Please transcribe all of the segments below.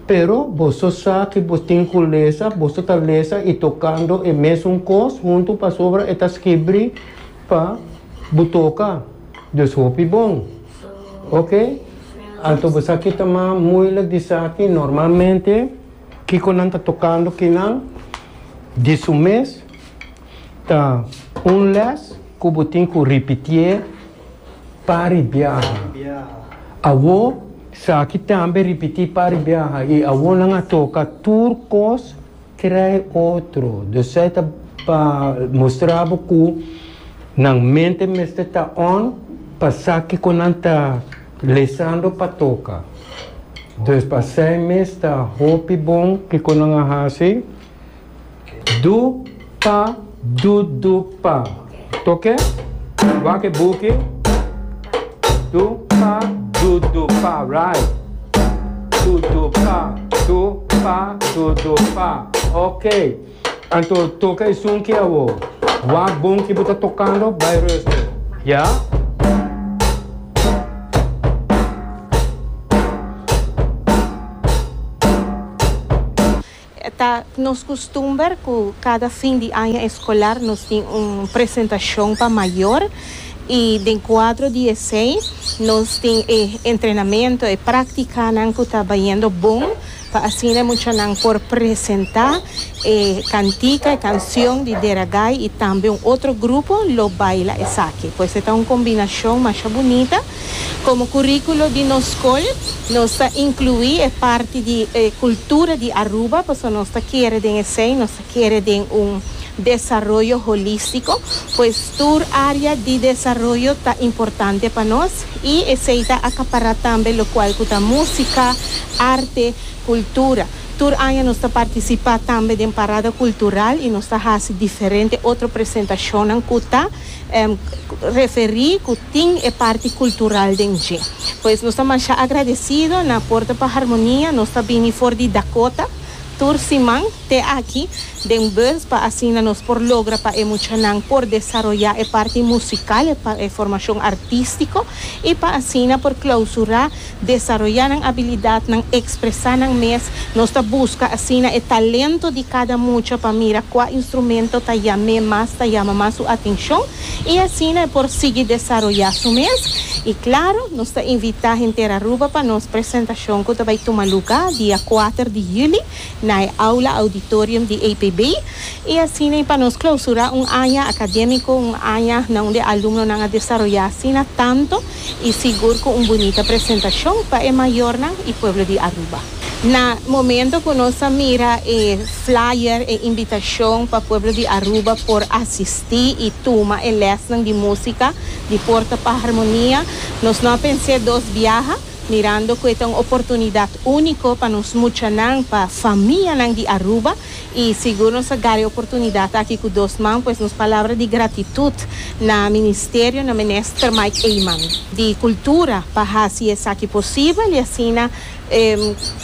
Pero boso sa ki bo tin ku lesa, boso ta lesa i tokando e mesun kos huntu pasobra e ta skibri pa bo toka. Dus hopi bon. Oke, anto bo sa ki ta mas muilik di sa ki normalmente kiko nan ta tokando kinan di su mes ta un lès ku bo tin ku ripitié. Pari biaha. Awo saki tambe ripiti pari biaha i awo nan a toka tur kos krei otro. Dus esei ta pa mustra bo ku nan mente mester ta on pa sa kiko nan ta lisando pa toka. Dus pa esei mes ta hopi bon kiko nan a hasi. Du, pa, du, du, pa. Toke. Wak e buki. Du, pa, du, du, pa. Right. Du, du, pa, du, pa, du, du, pa. Ok. Anto toka e sunki awo. Wak bon ki bo ta tokando bai ruster. Ya? Ta nos kustumber ku kada fin di aña eskolar nos tin un presentashon pa mayor i den kuadro di esei nos tin e entrenamentu, e praktikanan ku ta bayendo bon pa asina e muchanan por presentá e kantika, e kanshon di Deragai i tambe un otro grupo lo baila esaki. Pues e ta un kombinashon masha bunita. Komo kuríkulo di nos skol nos ta inkluí e parti di e kultura di Aruba pasobra nos ta kere den esei nos ta kere den un desaroyo holístiko. Pues tur área di desaroyo ta importante pa nos i esei ta akapará tambe lokual ku ta músika, arte, kultura. Tur aña nos ta partisipá tambe den parada kultural i nos ta hasi diferente otro presentashonnan ku ta. referí ku tin e parti kultural den dje. Pues nos ta masha agradesido na Porta pa Harmonia, nos ta bini for di Dakota tur siman te aki den bus pa asina nos por logra pa e muchanan por desaroyá e parti musikal, e formashon artístiko i pa asina por klausurá. Desaroyá nan abilidat, nan ekspresá nan mes. Nos ta buska asina e talento di kada mucha pa mira kua instrumento ta yam'é mas, ta yama mas su atenshon i asina e por sigui desaroyá su mes. I klaru, nos ta invitá henter Aruba pa nos presentashon ku ta bai tuma lugá dia kuater di yüli na e Aula Auditorium di APB i asina i pa nos klausurá un aña akadémiko, un aña na unde alumnonan a desaroyá asina tantu. y sigur cu un bunita presentacion pa e mayornan y pueblo di Aruba. Na momento cu nos a mira e flyer, e invitacion pa pueblo di Aruba por asisti y tuma e lesnan di musica di Porta pa Harmonia, nos no a pens'e dos biaha, mirando cu e ta un oportunidad unico pa nos muchanan, pa famianan di Aruba, Y sigur nos a gari oportunidad aki cu dos man pues nos palabra di gratitud na Ministerio na Minister Mike Eman di Cultura pa haci esaki posibel y asina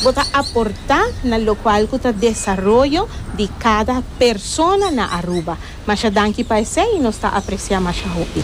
bo ta aporta na locual cu ta desaroyo di cada persona na Aruba. Masha danki pa esey y nos ta aprecia masha hopi.